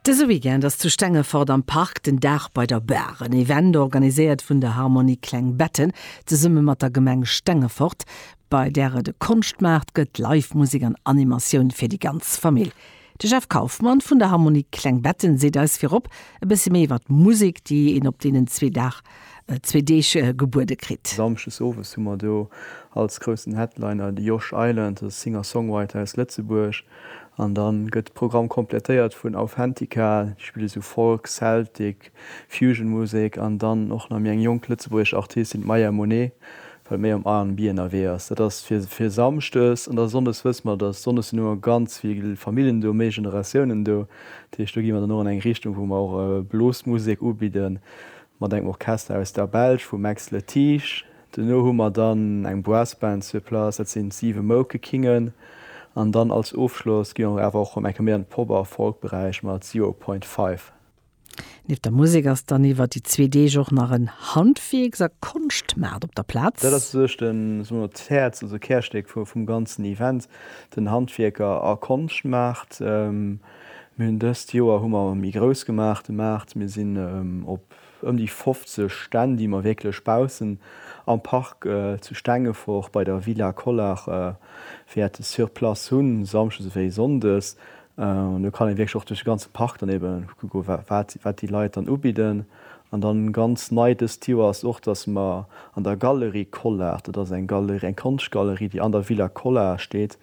Dëse Weekend ass zu Stengefort am Park den Dag bei der Bar, en Event organiséiert vun der Harmonie Klengbetten zesumme mat der Gemeng Stengefort, bei där et e Konschtmaart gëtt, Live-Musek an Animatioun fir déi ganz Famill. De Jeff Kaufmann vun der Harmonie Klengbetten seet eis virop e bësse méi iwwer d'Musek, déi een op deenen zwee Dag, zwee Deeg gebuede kritt. Samschdes owes hu mer do als groussen Headliner de Josh Island, e Singer-Songwriter aus Lëtzebuerg, An dann gëtt de Programm komplettéiert vun Authentica, déi spille sou Folk, Celtic, Fusion Musek an dann och nach méi eng jonk lëtzebuergesch Artistin, d'Maya Monet, wat méi am R&B ënnerwee ass. Dat ass fir fir Samschdes an da Sonndes wësse mer, dass Sonndes sinn ëmmer ganz vill Famillen do, méi Generatiounen do. Dat heescht, do gi mer dann och an eng Richtung, wou mer och Blosmusek ubidden, mat engem Orchester aus der Belsch, vum Max Letiche. Duerno hu mer dann eng Brassband sur place, dat sinn d'Siwe Moukekingen. An dann als Ofschloss gi mer awer och rëm eng Kéier méi an de Pop a Folk-Beräich mat Zero Point Five. Nieft der Musek ass dann iwwer déi zwee Deeg och nach en Handwierks a Konschtmaart op der Plaz. Dat ass sou sech de, soe mer, d'Häerz, also d'Kärstéck vum ganzen Event, den Handwierker a Konschtmaart. Mir hunn dëst Joer hu mer méi grouss gemaach de Maart, mir sinn op. ëm déi 50 Stänn, déi mer wierklech baussen am Park zu Stengefort bei der Villa Collart wäerte sur place hunn, samschdes ewéi sonndes. An do kann ee wierklech och duerch de ganze Park dann ebe kucke wat déi Leit dann ubidden. An dann ganz nei dëst Joer ass och, dass mer an der Galerie Collart, dat ass eng Galerie, eng Konschtgalerie, déi an der Villa Collart steet,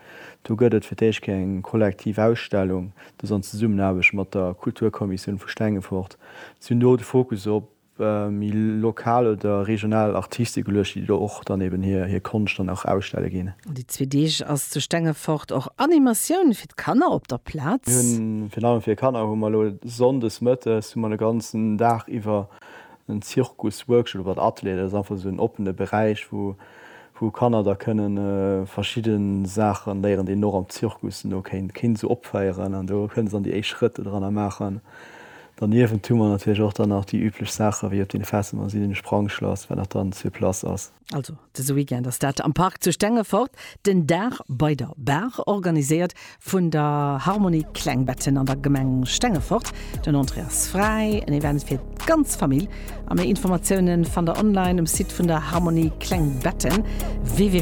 do gëtt et fir d'éischt keng kollektiv Ausstellung, dass an Zesummenaarbecht mat der Kulturkommissioun vu Stengefort Sinn do de Fokus op méi lokal oder regional Artiste geluecht, déi do och dann eben hir Konscht dann och ausstelle ginn? Un déi zwee Deeg ass zu Stengefort och Animatioun fir d'Kanner op der Plaz. Mir hunn virun allem fir Kanner hu mer elo Sonndes Mëttes hu mer de ganzen Dag iwwer en Zirkus Workshop oder Atelier. Dat ass einfach esou en oppene Beräich wou wou Kanner da kënne verschidde Saache léieren, déi een och am Zirkus no kéint kéint esou opféieren an do kënne se dann déi éischt Schrëtt do dranner maachen. Derniewent hu mer natierlech och dann nach déi üblech Saache wéi op deene Festen dann sinn, den Sprangschlass, wat nach dann sur place ass. Also dëse Weekend ass dat am Park zu Stengefort, den Dag bei der Baach organiséiert Vun der Harmonie Klengbetten an der Gemeng Stengefort. Den Entrée ass fräi, en Event fir d'ganz Famill. A méi Informatiounen fannt der online um Site vun der Harmonie Klengbetten www.